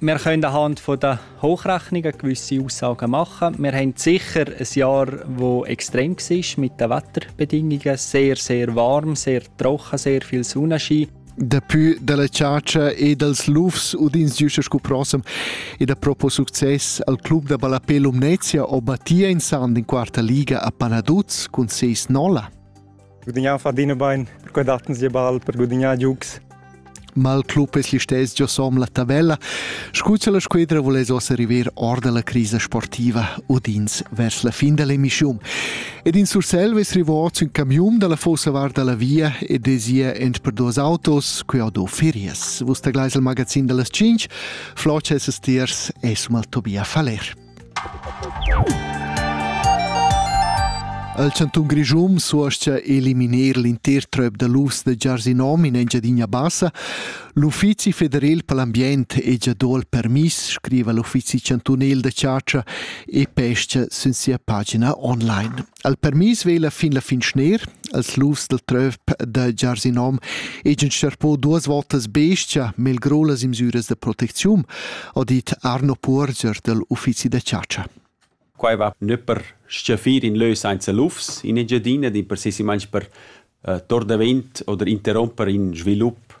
Wir können anhand von der Hochrechnungen gewisse Aussagen machen. Wir haben sicher ein Jahr, das extrem war mit den Wetterbedingungen. Sehr, sehr warm, sehr trocken, sehr viel Sonnenschein. Dapi dalla ciacia e dals lufs udins giuscha scu prossem e da propo success al club da ballapé Lumnezia o battia in sand in quarta liga a Panaduz cun ses nolla. gudagnau fadina bein per quei dattan sia ball per gudagnar giugs. Mal club es listess giosom la tabella. Scuccia la squadra voless ossa river or dalla crisa sportiva odins vers la fin dell'emissiun. Ed in Sursel ves rivoz un camiun dalla fossa varda la via ed desia ent per dos autos, qui ho do ferias. Vus taglais il magazin dallas 5, Flotsch es tiers, esum al Tobia Faler. Al chantun Grischun suoscha eliminar l'inter tröp da lufs da Giarsinom in Engiadina Bassa. L'Uffizi federal per l'ambient è già do il permis, scriva l'Uffizi chantunel da chargia e pesca sin sia pagina online. Al permis vela fin la fin schner, als lufs dal tröp da Giarsinom egan sterpo duas votas bestia mel gro las imsüras da protecziun, ha dit Arno Puorger dal uffizi da chatscha. Quai va nö per stgaffir in lö sainza lufs in Engiadina, di precisamaing per uh, tor davent oder interromper in svilup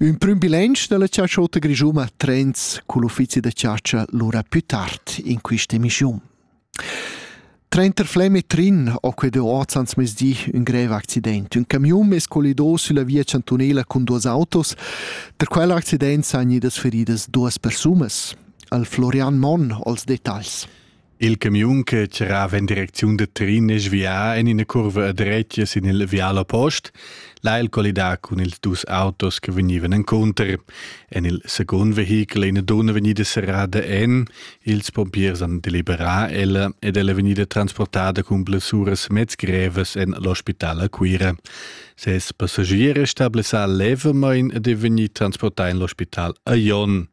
Ün prüm bilanc da la chatschotta grischuma trends cul uffizi da chatscha lura plü tard in quist'emischiun. Trenter Flem e Trin ho quedeu hoz ans mezdi ün grev accident. Ün camiun es collido sülla via chantunela cun duos autos. Tra quel accident s'han gnidas feridas duas persunas. Al Florian Monn ho'ls detagls. Il camiun che tgirava en direcziun da Trin è svià en ina curva a dretga sin il vial oppost, là il collidà cun ils dus autos che vegnivan encunter. En il secund vehichel è ina donna vegnida serrada en, ils pompiers han deliberà ella ed ella è vegnida transportada cun blessuras mezgrevas en l'ospital a Cuira. Ses passagier è stabilisà levamain ed è vegnì transportà en l'ospital a Jon.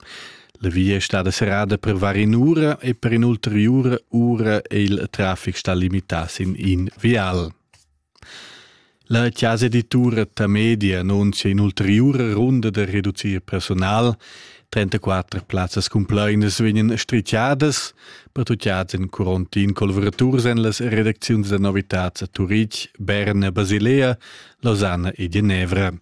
La via è stada serrada per var in'ura e per in'ulteriura ura è il traffic stà limità sin in vial. La chasa editura Tamedia annuncia in'ulteriura runda da reducir personal. 34 plazzas cumplainas vegnan strichadas, pertutgads en quarantin collavuraturs en las redacziuns da novitads a Turitg, Berna, Basilea, Lausanne e Genevra.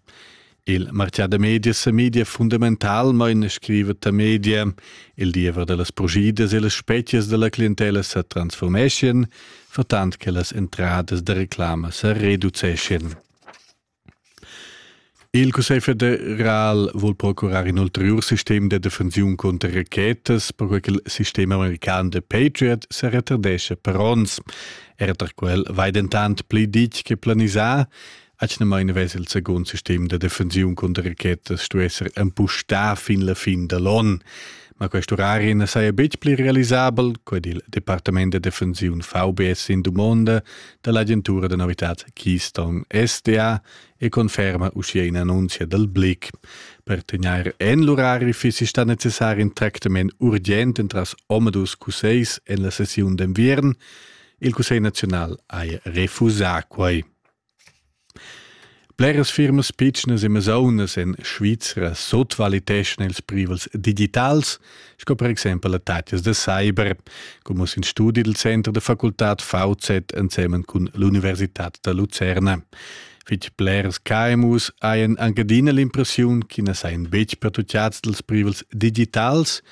Il martgà da medias e media fundamentalmain scriva ta media, il diever da las progidas e las spezias da la clientella sa transformeschien, vertant che las entradas da reclama sa reduceschien. Il Cussegl federal vuol procurar in ulterior sistem de defensiun contra rachetas, perquei che il sistema american de Patriot se retardesce per ons. Era tar quel vai dentant pli ditg che planisà, Atgnamain vess il secund sistem da defensiun cunter rachetas stu esser empustà fin la fin da l'on. Ma quest orari na saja betg pli realisabel, qued il Departament da defensiun VBS in dumonda da l'agentura da novitads Keystone SDA e conferma uschia in annunzia dal Blick. Per tegnair en l'orari fissi stà necessar in tractament urgent entras Omadus Cuseis en la sessiun d'enviern. Il Cussegl naziunal haja refusà quai. Bleras firmas pitschnas e masaunas en Svizra sutvaliteschan ils privels digitals, sco per exempel attacas da cyber, come uss in studi dal Center da facultad VZ ensemen cun l'Universitad da Lucerna. Fitg bleras KMUs hajan anche adina l'impressiun che na sajan betg pertucciads dals privels digitals,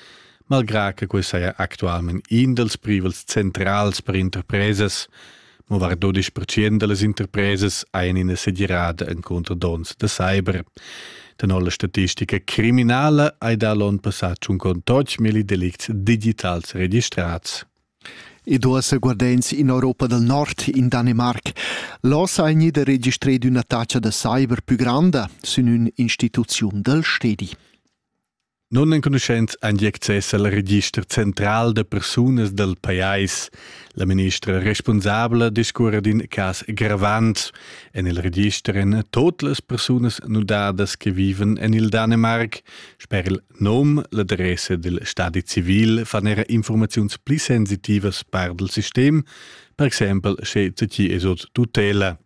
malgrà che quai saja actualmain in dals privels centrals per interpresas. Mo vardo dispertschien dallas interpresas ein ina segirada encunter dons da cyber. Tenor la statistica criminala ei da l'onn passat schon con milli delicts digitals registrats. E duas guardens in Europa del Nord, in Danimarc. Los ha gnida registrado una taccia da cyber più grande, sin un instituzion del stedi. Nunenconuschents han gì access al register central da persunas dal pajais. La ministra responsabla discurra d'in cas gravant. En il register èn tot las persunas nudadas che vivan en il Danimarc. Sper il num, l'adressa dil stadi civil fan era informaziuns pli sensitivas per il sistem, per exempel sche ti es ot tutela.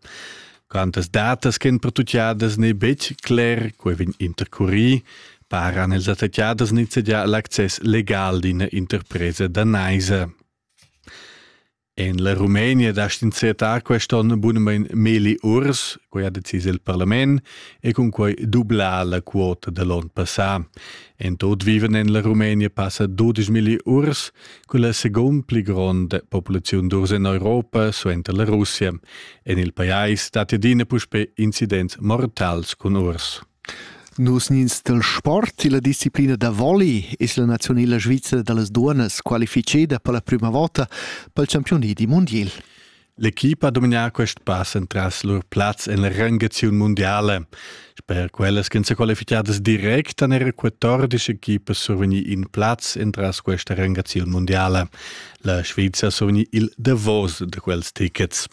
Quantas datas ch'en pertutgadas n'è betg cler, quai vegn intercurì, paran els attaccadas nizzegià l'access legal d'ina interpresa danaisa. En la Rumenia da stinzetta quest'onn bunamain milli urs, quai ha decis il parlament, e cun quai dublà la quota da l'onn passà. En tot vivan en la Rumenia passa 12 milli urs, Quella secund pli gronda populaziun d'urs en Europa suenter la Russia. En il pajais dat adina puspè incidents mortals cun urs. Nus nins del sport e la disciplina da volley es la nazionela svizra da las duonas qualificeda per la prüma vota pel championi di mundiel. L'equipa ha dominar quest pass entras lur plaz en la rangaziun mundiala. Sper quellas ch'en qualificadas direct han era 14 equipas survegni in plaz entras questa rangaziun mundiala. La Sviza ha survegni il davos de quels tickets.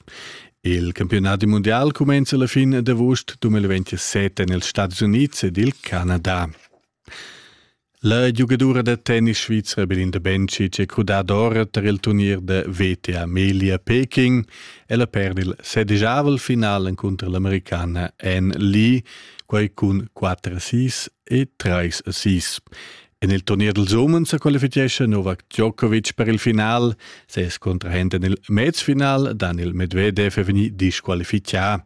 Il campionat mondial cumenza la fin d'avust 2027 en els Stati Uniti ed il Canada. La giugadura da tennis svizra Belinda Bencic è crudada ora tar il turnier da VTA Melia-Peking. Ella perd il sedigiavel final encunter l'Americana Anne Lee, quai cun 4 assist e 3 assist. En il turnier dels umens sa qualifichescha Novak Djokovic per il final. Ses contrahent en il mezfinal, Daniel Medvedev, è vegnì disqualifichà.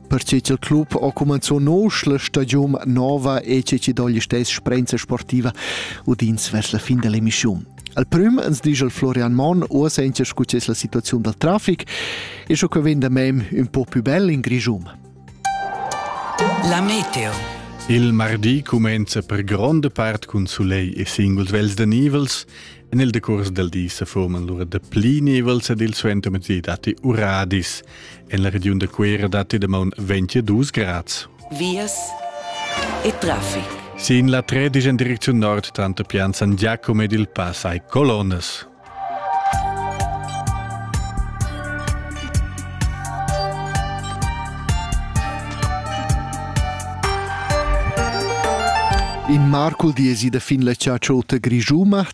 Perche ch'il club ha cumanzò nosch la stagiun nova e che chi dogl stess sprenza sportiva udins vers la fin dell'emissiun. Al prüm ans disch il Florian Monn o senza scu es la situaziun dal trafic e scho que vegn da mem ün po più bel in Grischum. La meteo Il mardi cumenza per gronda part cun sulegl e singuls vels da nivels. En il decurs del di se forman lura dapli nivels ed il suenter datti uradis. En la regiun da Cuera datti damaun 22 grads. Vias e traffic. Sin la 13 en direcziun nord tanto Pian San Giacomo ed il Pass hai colonnas. In mar cul diesi da fin la chatschoota grigiuma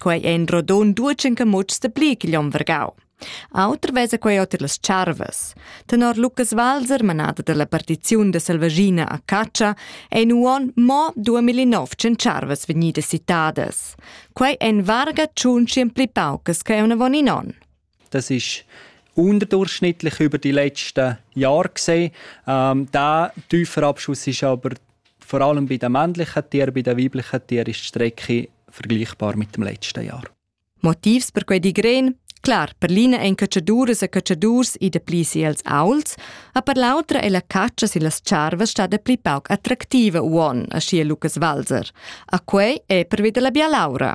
Quei ein rodun duetschen camutschs de pli ch'igl onn vargau. Auter vesa quei oter las charvas. Tenor Lucas Walser, manada dalla partiziun da selvaschina a Caccia, ein uonn mo 2900 charvas vegnidas citadas. Quei ein varga tschun pli paucas che unavon in onn. Das ist unterdurchschnittlich über die letzten Jahre gesehen. Ähm, der tiefe Abschuss ist aber vor allem bei den männlichen Tieren, bei den weiblichen Tieren ist die Strecke vergleichbar mit dem letzten Jahr. Motivs per quei digren Klar, per l'ina ein cacciaduras e cacciadurs i de pli si els auls, a per l'autra è la caccia si las charvas sta de pli pauc attraktiva uon, a scia Lukas Walser. A quei è per wieder la bialaura.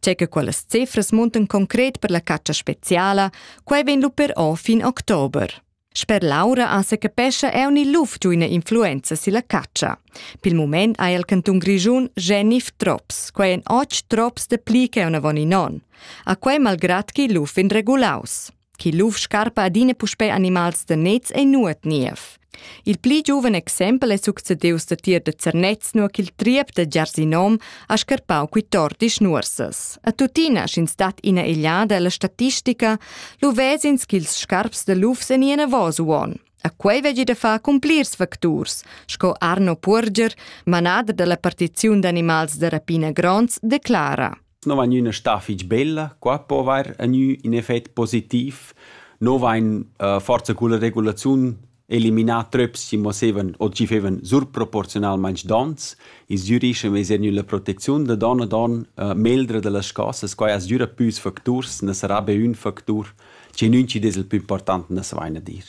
Tge che quellas cifras muntan concret per la caccia speziala, quai vegn lu però fin october. Sper Laura ha se capescha eu ni luf giu ina influenza silla caccia. Pil moment ha il cantun Grischun Genif Trops, quai en och trops de pli che una von in on. A quei malgrat chi luf in regulaus. chi luf scarpa adina puspè animals da nets e nuot niev. Il pli giuven exempel è succedius da tier da Zernez, nur ch'il triep da Giarsinom ha scarpau qui tordisch nuorsas. A tuttina, sch'ins stat ina egliada alla statistica, lu vesins ch'ils scarps da lufs en ina vosuon. A quei veggi da far cun plirs facturs, sco Arno Purger, manader dalla partiziun d'animals da rapina gronds, declara. non vain üna stà fich bella, qua po avair a gnü ün effet positiv. No vain uh, forsa culla regulaziun eliminà tröps chi moschevan o chi fevan surproporzionalmaing dons. I's dürischem esa gnülla protecziun da don a don uh, meldra da las chosas. Quai as düra püs facturs, na sarà be ün factur, che ün chi dess il plü important na savaina dir.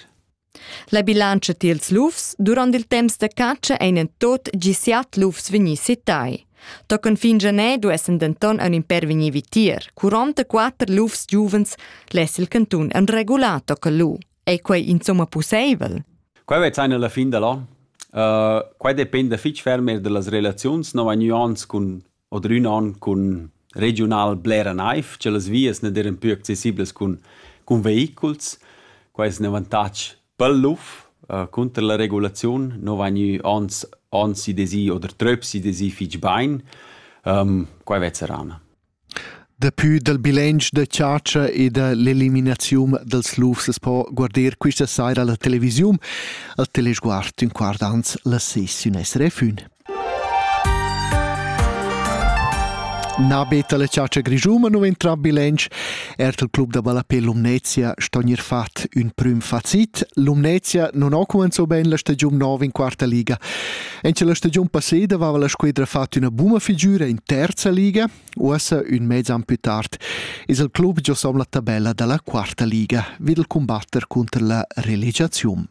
La bilantscha tiels lufs durant il temps da catscha ein en tot gi siat lufs vegni sitai. Tochen fin Gener duessen denton ein in per vegnir vitier. 44 lufs giuvens less il cantun en regular toccare lu. Ei quei insomma pusseivel? Quei vez ein alla fin dall'an. Uh, quei dependa fitg ferm er dallas relaziuns, nova nuance cun Odrün on cun regiunal blera naiv, cha las vias na d'eiran pü accessiblas cun cun vehiculs. Quai es ün avantatg pel luf. Cunter la regulaziun nu vain gnü ans ans i desi oder tröps i desi fich bain. Quai vezza rana. Dapü dal bilanç da chatscha e da l'eliminaziun dals lufs as po guarder quista saira la televisiun, al Telesguard ün quart ans las ses in SRF ün. Na beta la chatscha grischuma nu entra bilanç, er il club da ballapè Lumnezia sto gnir fat ün prüm facit. Lumnezia non ho cumanzò ben la stagiun nova in quarta liga. En la stagiun passeda aveva la squadra fatto una buna figura in terza liga, Uossa, ün mez an plü tard, es il club giosom la tabella da la quarta liga vi dal cumbatter cunter la relegiaziun.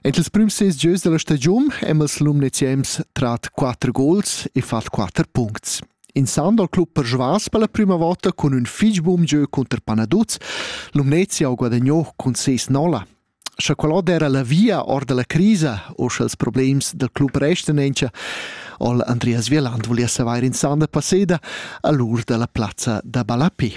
En ils prüms ses gieus da la stagiun hem els Lumneziens trat 4 gols e fat 4 puncts. Insando al club per Žvas per la prima volta cun ün fich bun gieu cunter Panaduz, Lumnezia ho guadagno cun 6-0. Scha quel ot era la via or da la crisa u scha'ls problems dal club restan auncha, ha'l Andreas Wieland voulia savair insanda passeda a l'ur da la plazza da ballapè.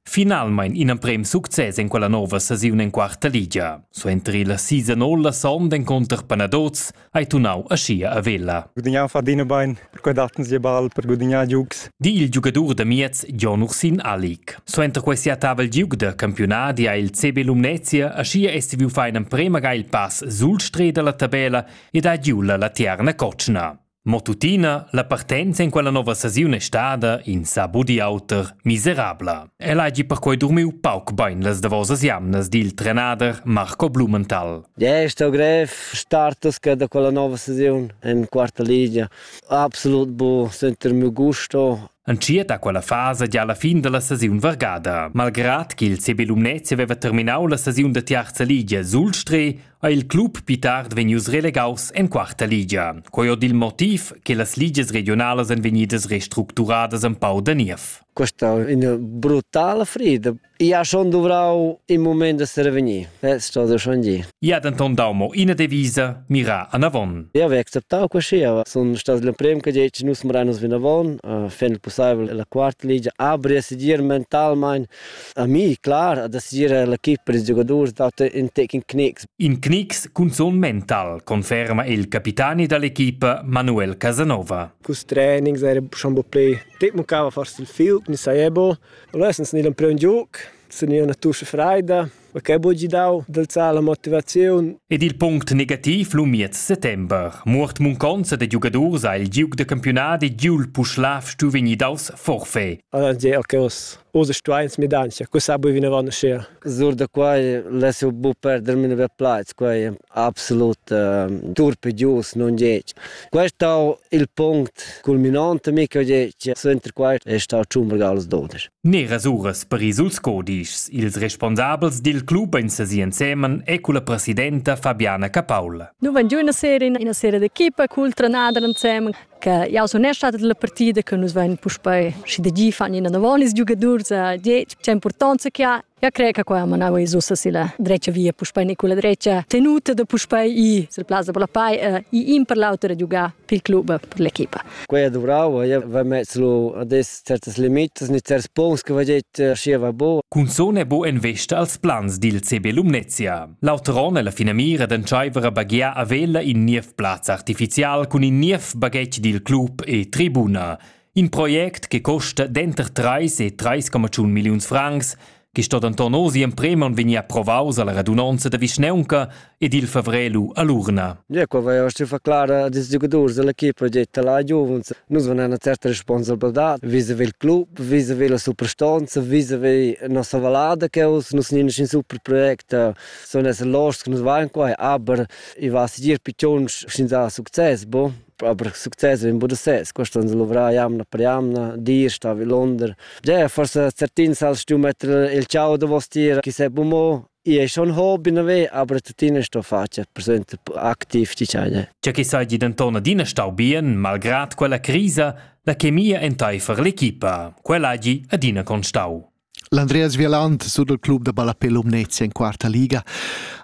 Finalmain ina prem success en quella nova stagiun en quarta ligia. Suenter la season all la sonda encunter Panadoz hai tunau aschia a Vella. Gudignau fa dina bein, per quei datten sie ball per gudignar giugs. Di il giugadur da miez Jon Ursin Alik. Suenter quei sia tavel giug da campiunadi ha il CB Lumnezia aschia essi fein emprema ga il pass sul stret dalla tabella ed ha giu la tierna cotschna. Mo tuttina, la partenza in quella nova stagiun è stada, in sa budi auter, miserabla. El hagi perquei durmiu pauc bein las davosas jamnas dil trenader Marco Blumenthal. Gest o grev startas che da quella nova sesiun en quarta ligia. Absolut bu, sentir miu gusto. Entschiet a quella fasa gia alla fin dalla sesiun vargada. Malgrad ch'il CB Lumnezia aveva terminau la sesiun da tiarza ligia sul Streh, ha il club pli tard vegnius relegaus en quarta ligia. Quei ho dil motiv che las ligias regionalas ein vegnidas restructuradas empau da niev. questa ina brutala frida. Ia schon dovrau in moment da serevegnir. Eh, sto da schon gi. Ia denton dau mo ina devisa, mira anavon. Ia ve acceptau così, son stat le prem che dice nus mranos vinavon, uh, fend possibile la quarta ligia, abri a sigir mentalmein a mi, clar, a sigir la chip per i giocatori date in taking knicks. In knicks cunzun mental, conferma il capitani dall'equipa Manuel Casanova. Cus trainings era schon bo play Dit mancava forse il filt, mi saiebo. Allora sun gnü l'emprem giug, sun gnü üna tuscha freida, ma che bo gi dau d'alzar la motivaziun. Ed il punct negativ lu miez settember. Muort munconza da giugadurs ha il giug da campiunadi giul Puschlav stu vegnir daus forfait. Allora gi, ok, os Usa stuain smidanzia, cu sa bui vinavant uschea? Sur da quai less eu bu perder mia nouva plaz, quai è absolut uh, dur per gius, non gec. Questo è il punct culminante mi che ho detto, suenter questo è stato Ciumberg als Doder. Neras uras per ils codischs. Ils responsabels dil club in sesi ensemen e con la presidenta Fabiana Capaul. Nu van giù una sera in una sera d'equipa col trenador ensemen. che jau sun er stata la partida che nus vein puspei și de gi fan ina novonis giugadurs die c'è importanza che ha Ja cre che qua manava i zusa si la drecha via puspei Nicola drecha tenuta da puspei i sul plaza per la pai i in per l'auter a giugar per club per l'equipa. Quei è duvrau, io va mezzo adesso certas limitas né certs punts che va detto aschi va bu. Cunzun è bu en vesta als plans dil CB Lumnezia. L'auter onn è la finamira d'entscheiver a baghiar a Vella in niev plaz artificial cun in niev baghetg dil club e tribuna. In project che costa denter 3 e 3,1 milliuns francs chi sto denton oz emprem on vegnir approvaus alla radunonza da vischneunca ed il favrer lu all'urna. Ecco, avevo stuto clara als giocatori dell'equipe, ho detto alla Juventus, nus vengono una certa responsabilità vis-a-vis il club, vis-a-vis la superstanza, vis-a-vis la nostra valada che us, nus non in super project, sono essere lost che nus vanno qua, aber ich weiß dir piccons senza succes, boh. Aber succes vegn buca da sez, questo ans luvrar jamna per jamna, dir sta vilonder. Ja, forse certin sal stu metter il ciao da vostier, chi se bumo, i è schon hobby nove, aber tuttina sto faccia presente aktiv di ciao. Già che sai di denton adina stau bien, malgrad quella crisa, la chemia entaifer l'equipa, quella agi adina constau. L'Andreas Vialant sut il club da ballapè Lumnezia en quarta liga.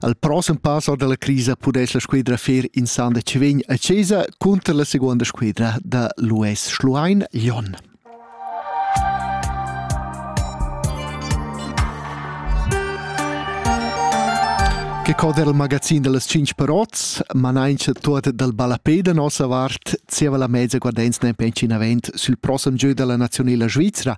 Al prossem pass or dalla crisa pudess la squadra fer in san da Cevegn a Cesa cunter la seconda squadra da l'US Schluein Jon. Che coder il magazin dellas cinc parots, manaincha tuot dal ballapè da nossa vart, zieva la mezza guardenz nempe in avent sül prossem gieu della nazionela svizzera,